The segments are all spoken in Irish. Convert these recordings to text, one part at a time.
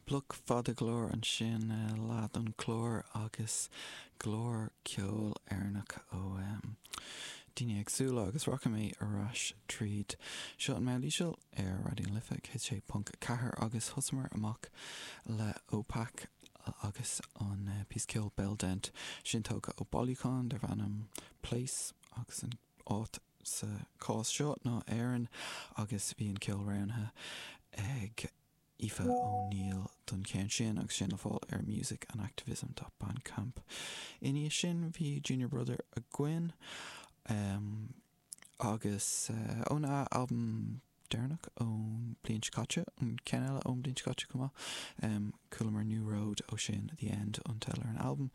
Bloc fada go leor ansin, leath don chlár agus go leor ceoil Éireannach ó daoine eagsúla agus rachaidh mé ar ais tríd. Seo an Meáin Íseal ar Raidió na Life 106.4 agus thosamar amach le Opach agus an píosa ceoil Bell Dent, sin tógtha ó bailiúchán darb ainm Place agus an áit sa cás seo ná Éirinn agus bhí an ceol roghnaithe ag Aoife O'Neill don cheann sin agus sin le fáil ar Music and Activism dot bandcamp. I ndiaidh sin bhí Junior Brother againn agus óna albam deireanach ón bliain seo caite, an ceann eile ón bliain seo caite chomh maith. Chualamar New Road ó sin, The End an teideal ar an albam,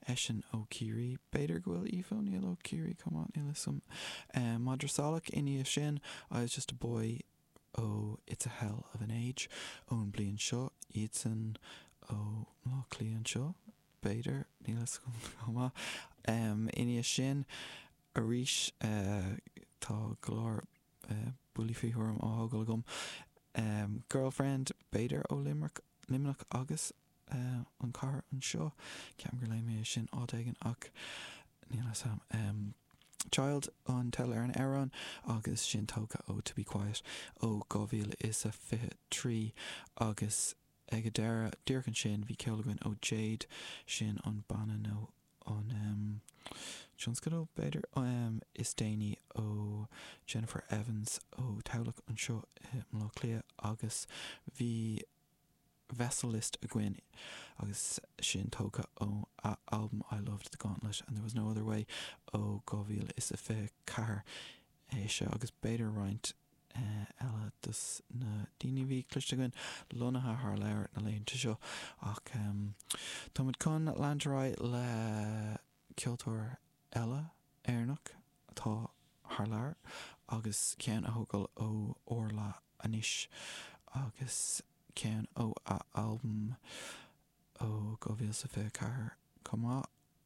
eisean ó Chiarraí, b'fhéidir go bhfuil Aoife Ó Neill ó Chiarraí chomh maith, níl 'fhios a'm. Madra Salach i ndiaidh sin, I Was Just a Boy ó It's a Hell of an Age ón bliain seo, iadsan ó Bhaile Átha Cliath anseo, b'fhéidir, níl 'fhios a'm chomh maith. I ndiaidh sin arís tá go leor. buillí faoi thuairim á thógáil agam. Girlfriend, b'fhéidir ó Luimneach agus an chathair anseo. Ceapaim gur léigh mé é sin áit éigin ach níl fhios a'm. Child an teideal ar an amhrán agus sin tógtha ó To Be Quiet ó 2023 agus ag an deireadh díreach ansin bhí ceol againn ó Jaed, sin an banna nó an tionscadal, b'fhéidir, is déanaí ó Jennifer Evans ó Tamhlacht anseo i mBaile Átha Cliath agus bhí Vessel List againn agus sin tógtha ó a albam I Loved The Gauntlet and There Was No Other Way ó 2024. É seo agus b'fhéidir roinnt eile dos na daoine a bhí cloiste againn lonnaithe thar lear na laethanta seo ach tá muid chun leanúint ar aghaidh le ceoltóir eile Éireannach atá thar lear agus ceann a thógáil ó Orla anois agus ceann ó a albam ó 2024 chomh maith.